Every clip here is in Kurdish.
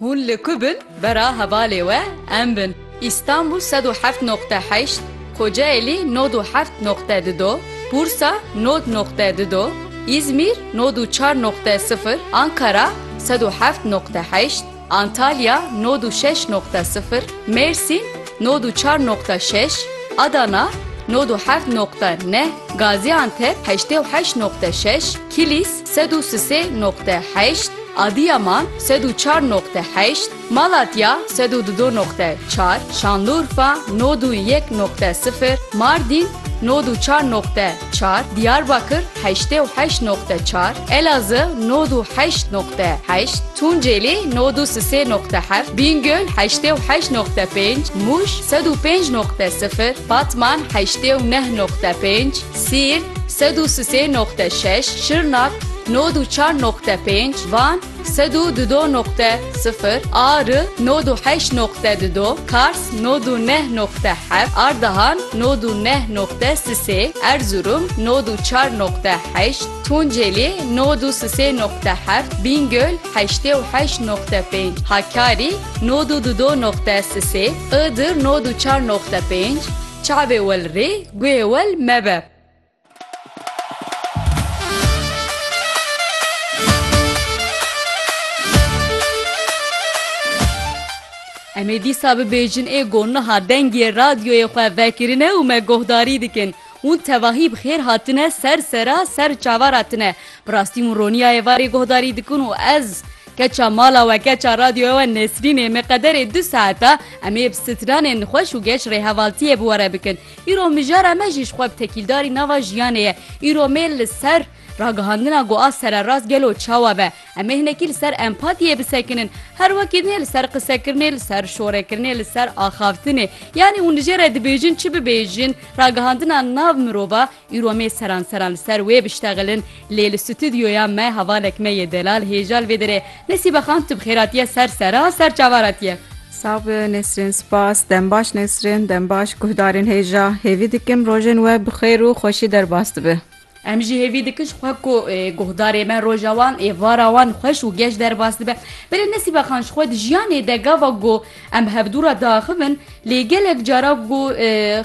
Hûn li ku bin bera hevalê we em bin. Îstanbûl sed û heft noqte heşt, Kocaelî nod û heft noqte di do, Bursa nod noqte di do, Îzmîr nod û çar noqte sifir, Ankara sed û heft noqte heşt, Antalya nod û şeş noqte sifir, Mêrsîn nod û çar noqte şeş, Adana nod û heft noqte neh, Gazîantep heştê û heşt noqte şeş, Kilîs, Sed û sisê noqte heşt, Adiyaman sed û çar noqte heşt, Malatya sed û dudo noqte çar, Şanlurfa nod û yek noqte sifir, Mardîn nod û çar noqte çar, Diyarbakir heştê û heşt noqte çar, Elazığ nod û heşt noqte heşt, Tunceli nod û sisê noqte heft, Bîngöl heştê û heşt noqte pênc, Mûş sed û pênc noqte sifir, Batman heştê û neh noqte pênc, Sîrt, sed û sisê noqte şeş, Şirnak, nod û çar noqte pênc, Van, sed û dudo noqte sifir, Ari, nod û heşt noqte dudo, Kars, nod û neh noqte heft, Ardahan, nod û neh noqte sisê, Erzurum, nod û çar noqte heşt, Tunceli, nod û sisê noqte heft, Bîngöl, heştê û heşt noqte pênc, Hakkari, nod û dudo noqte sisê, Iğdır, nod û çar noqte pênc, Çavê wel rê, guhê wel mebe. Em ê dîsa bibêjin ê got niha dengê radyoyê xwe vekirine û me guhdarî dikin. Hûn tevahî bi xêr hatine ser sera ser çavara tine. Bi rastî hûn ronîya êvarê guhdarî dikin û ez Keça mala we keça radyoya we Nesrînê me qederê du saeta em ê bi stranên xweş û geş rêhevaltiyê bi we re bikin. Îro mijara me jî ji xwe bi tekîldarî nava jiyanê ye. Îro me li ser ragihandina ku a sererast gelo çawa be. Em ê hinekî li ser empatiyê bisekinin. Her wekî din ê li ser qisekirinê, li ser şorekirinê, li ser axavtinê. Yanî hûn li jê re dibêjin çi bibêjin, ragihandina nav mirova, Îro me seran seran li ser wê biştexilin lê li stûdyoya me hevalek me yê delal hêja li vê derê. Nesîbe xan tu bi xêr hatiye ser sera ser çavan hatiye. Sağ bi Nesrin spas. Dem baş Nesrin, dem baş guhdarên hêja. Hêvî dikim rojên we bi xêr û xweşî derbas dibe. Em jî hêvî dikin ji xwe ku guhdarê me roja wan, êvara wan xweş û geş derbas dibe. Belê Nesîbe xan ji xwe di jiyanê de gava ku Em bi hevdû re diaxivin lê gelek cara ku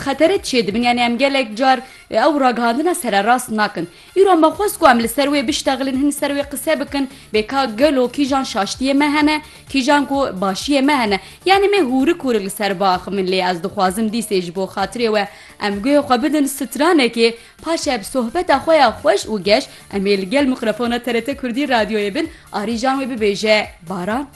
xetere çê dibin yanî em gelek car ew ragihandina sererast nakin. Îro me xwest ku em li ser wê biştexilin hin li ser wê qise bikin bê ka gelo kîjan şaştiyê me hene kîjan ku başiyê me hene yanî me hûrik hûrik li ser biaxivin lê ez dixwazim dîsê ji bo xatirê we em guhê xwe bidin stranekê paşê bi sohbeta xwe ya xweş û geş em ê li gel mikrofona TRT Kurdî Radyoyê bin arîjan wê bibêje Baran.